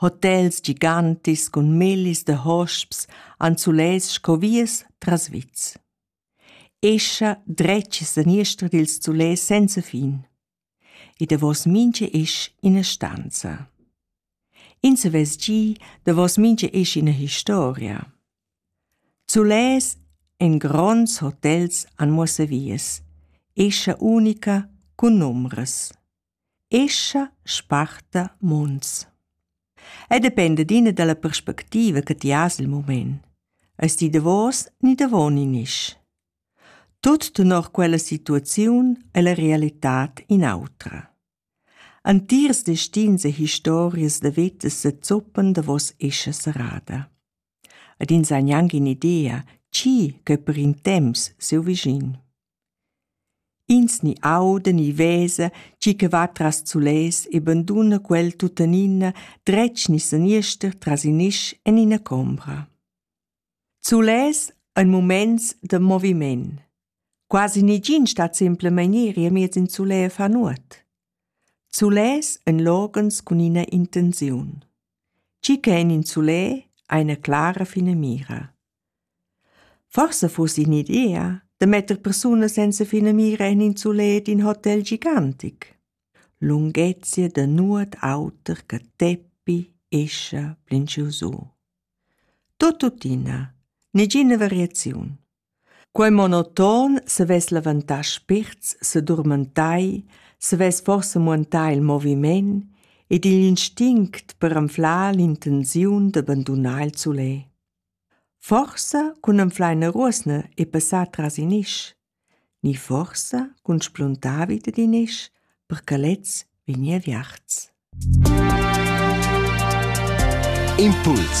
Hotels gigantis cun millis da hosps han sulets sco vias tras vits. Escha dretg e saniester dils sulets senza fin. E davos mintga esch ina stanza. Ins havess gi davos mintga esch ina historia. Sulets en gronds hotels han muossa vias. Escha unica cun numbras. escha sparta munts. Ei dependa d'ina dalla perspectiva che ti has il mument. Eis ti davos ni davon in isch. Tut tenor quella situaziun e la realitad in autra. Antiers destins e historias da vita se zoppan davos escha serrada. Ed ins ha gnanc in idea, chi che per in temps seu vischin. Ins ni auda ni vesa tgi che va tras sulets e banduna quel tuttenina dretg ni seniester tras in isch en ina combra. Sulets ein muments da moviment. Quasi negin stat simplemein iri amiez in sulè a far nuot. Sulets ein loghens cun ina intenziun. Tgi che en in sulè ha ina clara finamira. Forsa fuss in'idea da metter persunas senza finamira en in sulet in hotel gigantic. Lunghezia da nuot auter che teppi, escha, plinchiusu. Tuttina, negina variaziun. Quei monoton savess levantar spirts, se durmentai, savess forse muentar il moviment ed igl instinct per anflar l'intenziun d'abbandonar il sulet. Forsa cun anfleina ruosna e passar tras in isch, ni forsa cun spluntar vi dad in isch per che lez vegni aviarts. Impuls